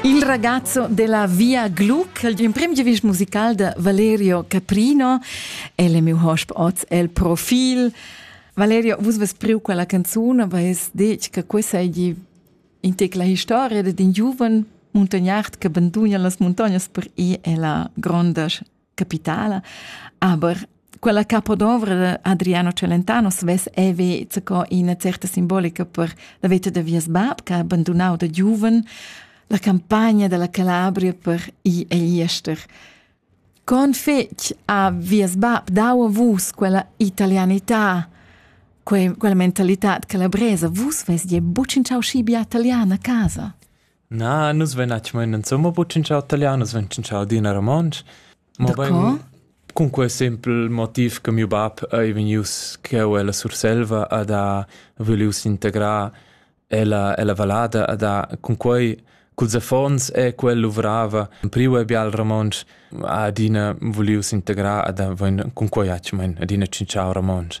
Il ragazzo della Via Gluck, il imprim giovist musical de Valerio Caprino, el è mio hosp oz el profil. Valerio, vus vus priu quella canzone, aber es detg che questa è in te la historia de din giuven muntagnard che banduna las montagnas per ir alla granda capitala. Aber quella capodovra de Adriano Celentano svess eve zaco ina certa simbolica per la veta de vies bab che ha abandonau da giuven la campagna della Calabria per i e iester. Con fec a vies bab dau a vus quella italianità, quella mentalità calabresa, vus vest je bucin ciao scibia italiana a casa? Na, nus vein natg mo insumma buc tschintschau talian, nus vein tschintschau adina romontsch. Mobein cun quei sempel motiv che miu bab ei vegnius cheu ella Surselva ad ha vulius integrar ella, ella vallada, ad ha cun quei culs affons e quel luvrava priu e bia il romontsch, ha adina vulius integrar ad ha vein cun quei hatg mein adina tschintschau romontsch.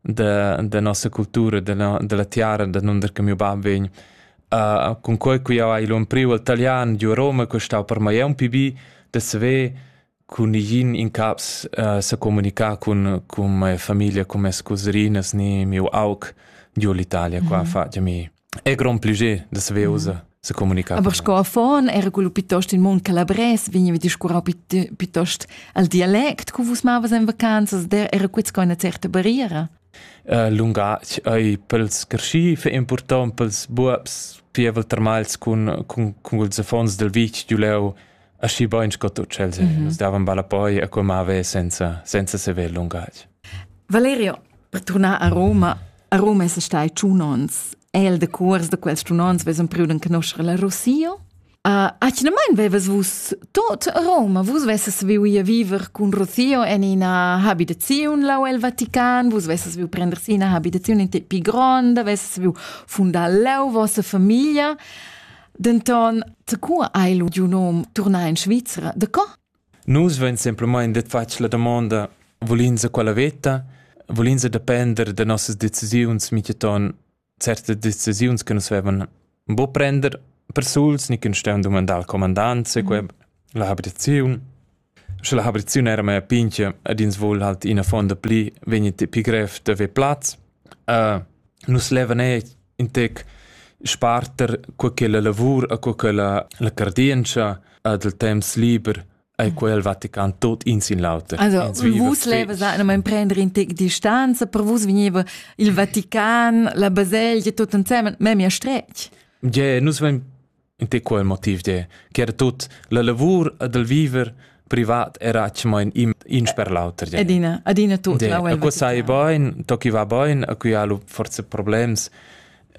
da, da nossa cultura, dalla, dalla tiara danunder che mio bab vegn. Uh, con quei qui ha ilon priu al italian giu a Roma costau per mai un pibi da saver con igin in caps uh, se comunica con con mia famiglia con mes coserinas ni mio aug giu l'Italia qua mm -hmm. fa mi è grond piacer da saver usar se comunicare. Aber sco affon era quello piuttosto in mund calabrès, vegniva discurrau piuttosto al dialect che vus mavas in vacanzas, der era quits con una certa barriera. Uh, lungatg ei pels carschi fe important pels buabs pievel termals cun cun cun ils affons del vitg du leu aschi bein sco tu Chelsea. Mm -hmm. Nus davan balla poi a quei mave senza senza sever lungatg. Valerio, per tornar a Roma, a Roma è stai ciunons el de curs de quels ciunons vesem priu den conoscere la Rossio. Uh, Achinamain veves vus tot Roma, vus vesses viu ia viver cun Rossio en ina habitaziun lau el Vatican, vus vesses viu prender si ina habitaziun in te pi gronda, vesses viu fundar leu vossa familia. Denton, co hai lu giu num turnar in Svizra? De co? Nus vein semplamain detg fatg la damonda, volins a quella veta, volins depender da nossas decisiuns miteton certe decisiuns che nus vevan bo prender persuls ni che stau dumandar al comandant se queb la habitaziun Sche la habriziun era mea pinchia ed ins voul halt ina fuonda pli, vegni ti pii grev d'avair plaz. nus levan eir in tec sparter cur che la lavur e cur che la, la cardientscha ed il temps liber e quel Vatican tot in sin l'auter. Also, vus levas anima prendere in tec distanza, per vus veniva il Vatican, la baselgia, tot ensemen, memia stretg. Ja, yeah, nus vein In te quel motiv de, che era tut la lavur ed il viver privat era atschemain im in sper l'auter. Adina, adina tut. De, la a sai bain, to chi va bain, a cui ha forse problems,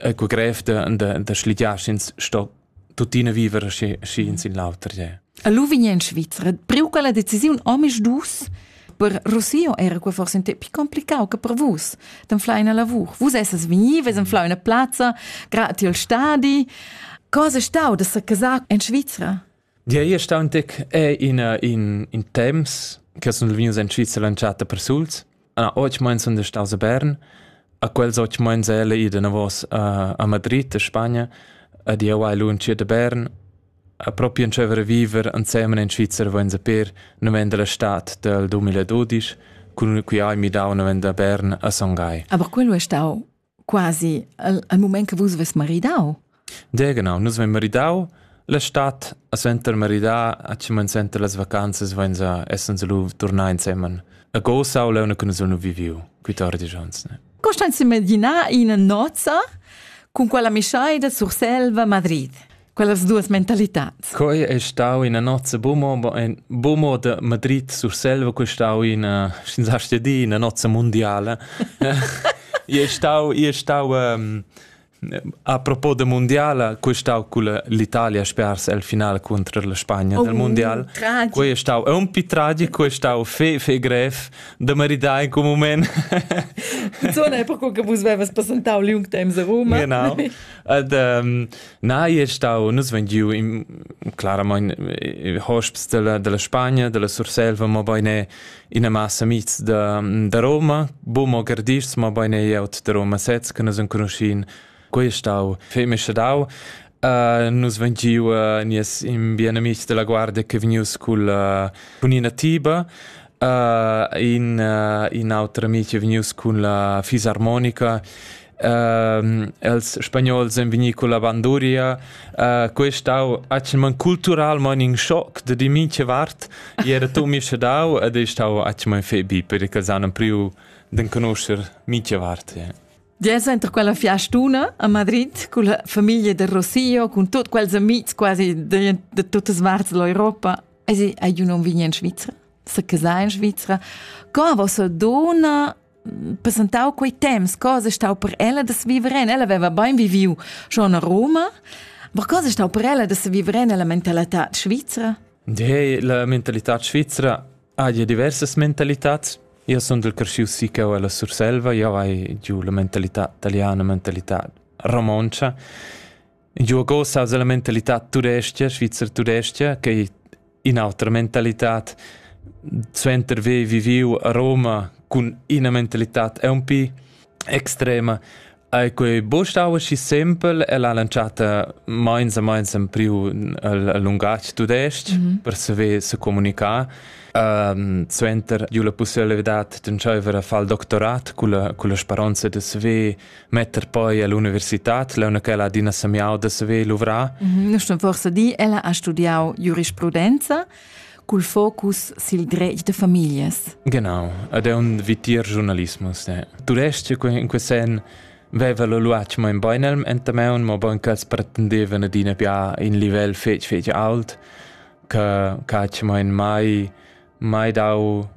a cui grev de, de, de schligiaschins sto tuttina viver schi, schi in sin l'auter. Ja. A lu vegn in Svizra, preu quella decisiun omis dus, Per Rossio era quei forse un tep complicau che per vus d'anflar una lavur. Vus essas vegni, ves anflau una plazza, grati al stadi. Cosa è stau da se casar in Svizzera? Dir ei stau un tec è in, in, in temps che sono vegnius in Svizzera lanciata per suls. Ah, oggi meins sono staus a Bern, a quels oggi meins è ella ida a vos a, a Madrid, a Spagna, a dir vai lunch da Bern, A propi entscheiver a viver ensemen in Svizzer vainsa per naven dalla stad dal 2012 cun ün qui hai midau naven da Bern a Son Gai. Aber quello è stau quasi al, al moment che vus vus maridau. De genau, nus vein maridau la stad a senter maridar a cimen senter las vacanzas vainsa essens lu turnar insemen. A Gosau leuna cun nus nu viviu, qui tar di jons. Costanza Medina in nozza cun quella misaida sur Selva Madrid. quellas duas mentalitats. Quei è stau ina nozza bumo, bumo de Madrid sur selva, quei è stau ina, senza di, ina nozza mondiale. è stau, è stau um, a propos de mondiale, quei è stau con l'Italia spers al finale contro la Spagna oh, del mondiale. Tragico. Quei è stau un po' tragico, quei è stau fe, fe grev de maridare in quel moment. Zona è per quello che vos avevas presentato l'Jungtheim a Roma. Genau. Und, ähm, Na, è stau, nus vein giu claramain hosps della, della Spagna, della Surselva, ma beine ina massa mits da, da Roma, bum o gardists, ma beine ieut da Roma sez, che nus enconoscin. Quei è stau feme schadau. Uh, nus vein giu uh, nies in bien amics della guardia che vegnius cul, uh, cun ina tiba, uh, in, uh, in autra amic che vegnius cun la fisarmonica Ehm, els spagnols ein vegni con la banduria. Uh, quei stau atschman culturalmein in schock da di mincha vart. I era tu mi schadau ed ei stau atschman febi perché els han priu den conoscer mincha vart. Yeah. Dies enter quella fiastuna a Madrid con la famiglia del Rossio, con tutti quels amici quasi de, de tutte parti dell'Europa. E si, ai non vigni in Svizzera? Se casai in Svizzera? Come vostra donna presentau quei temps cosa stau per ella da viver en ella aveva bein viviu schon a Roma ma cosa stau per ella da viver en la mentalità svizra De, la mentalità svizra ha ja diversas mentalitats io sono del cresciuto sì che ho la Surselva io hai giù la mentalità italiana mentalità romoncia Giugo sa la mentalità turescha, svizzer turescha, che è un'altra mentalità. Suenter aver viviu a Roma con una mentalità è un po' extrema. E quei bostau aschi simpel e l'ha lanciata meins a meins in più il lungatg tudestg mm -hmm. per saver se comunicare. Um, suenter giu la possibilità di tschaiver a far il doctorat con la, con la speranza di saver metter poi all'universitad leuna che ha adina semiau da saver luvrar? Mhm, nu sto forse di, ella ha studiau giurisprudenza cul focus sil dretg de familias. Genau, ed è un vitier giornalismus. Eh. Tu resti in quel sen veva lo luac mo in beinelm entameun, mo bon ch'els pretendevan adina pià in livel fetg fetg alt, che cacci mo in mai mai dau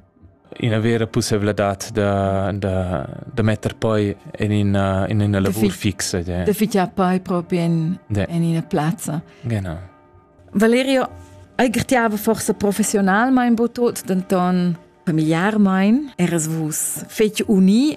ina vera pusseivladad da, da, da metter poi en ina, in ina lavur fi fixa. De. De fitar poi proprio in, de. in ina plazza. Genau. Valerio, aigrtiava forse professionalmein bo tot, denton familiarmein eras vus fetg uni